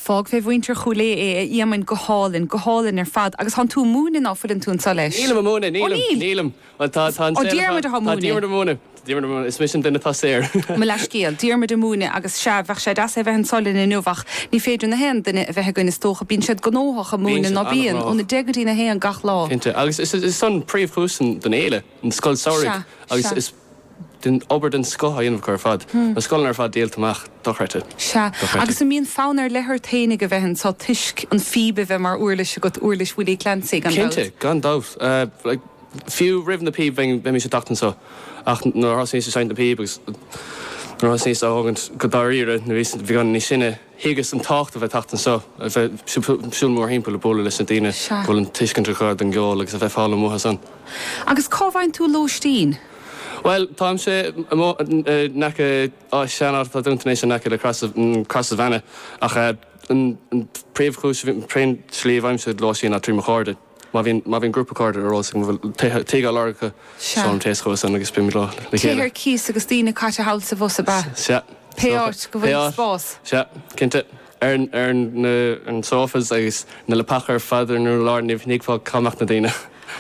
Fág fé mhuintir Chúil Aodha é, a Éamoinn. Go hálainn. Go hálainn ar fad. Agus thán tú a' múineadh ná fuileann tú anso leis? Nílim a' múineadh, Ó nílim, níl? nílim. Bhuel tá, tá an Ó, saol atá, Diarmuid athá tá Diarmuid a' múineadh. múineadh, tá Diarmuid a' múineadh. Is mise an duine atá saor. Mo leathscéal. Diarmuid a' múineadh agus sea, bheadh sé deas é bheith anso linn inniu ach ní féidir na haon duine a bheith againn is dócha. Bíonn siad gnóthach a' Bíonn múineadh, siad ná bíonn? Óna an-ghnóthach. deich go dtí'n a haon gach lá. Cinnte. Agus is, is, is é an príomhchúis den, den fhéile, an scoil samhraidh Sea. agus Sea. is. obair den scoth á dhéanamh acu ar fad. Na scoileanna ar fad díolta amach. Dochreidte. Sea. Agus an mbíonn fonn ar leith ort féin ag a bheith anseo toisc an phíb a bheith mar uirlis agat, uirlis Willie Clancy, gan dabht? Cinnte. Gan dabht. Like, fiú roimh na píb bheimís ag teacht anseo ach nuair a thosnaíos ag seinnt na píb agus nuair a thosnaíos á thógaint go dáiríre nuair a bhíos beagán níos sine, Thuigeas an tábhacht a bheith ag teacht anseo, a bheith ag siúl mórthimpeall, ag bualadh leis na daoine, go bhfuil an tuiscint acu ar an gceol agus a bheith ag foghlaim uathu san. Agus cá bhfaigheann tú lóistín? Bhuel, táimse in aice áit, sean-áit atá dúnta anois, in aice le Crosses of Annagh, ach an príomhchúis, an tslí a bhfaighimse lóistín ná trí mo chairde. Má bhíonn, má bhíonn grúpa cairde ar eolas agam a bhfuil tithe, tithe á lorg acu, Sea. seolaim téacs chucu san agus bímid leo le Tithe chéile. ar cíos agus daoine caite thall is abhus ab ea? Sea. Pé áit go Pé bhfuil áit. spás. Sea. Cinnte. Ar an, ar an, na, ar na sofas agus na leapacha ar fad ar an urlár ní thuigfeá cá mbeadh na daoine.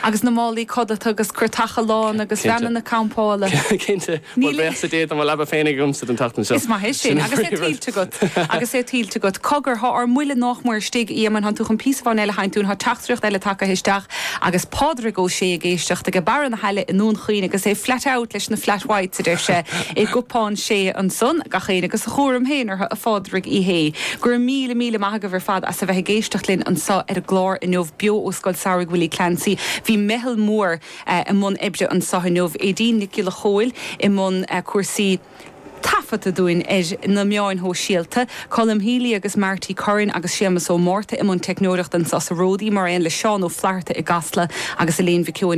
Agus na málaí codlata agus carr, tá, lán agus Cinnte. veaineanna campála. Cinnte. Bhuel, Níl. buíochas le Dia tá mo leaba féin agamsa don tseachtain seo. Is maith é sin. Sin an Agus é príomhrud. tuillte agat. Agus é tuillte agat. Cogar, thá ár mbuille nách mór istigh. Éamonn, thán tú chun píosa amháin eile a sheinnt dúinn. Thá teachtaireacht eile tagaithe isteach agus Pádraig Ó Sé ag éisteacht aige Barra na hAille i nDún Chaoin agus é flat out leis na Flat Whites, a deir sé, i gCupán Sé ansan. Gach éinne agus a chúram féin air, a Phádraig Uí Shé. Go raibh míle míle maith agaibh ar fad as a bheith ag éisteacht linn anso ar an gclár inniu beo ó Scoil Samhraidh Willie Clancy. Bhí meitheal mhór. i mbun oibre anseo inniu, Aedín Nic Giolla Chomhaill i mbun cúrsaí taifeadta dúinn ar na meáin shóisialta, Colm Seoighe agus Marty Curran agus Séamas Ó Márta i mbun teicneoireachta anseo sa Ródaí mar aon le Seán Ó Flaithearta i gCasla agus Elaine Mhic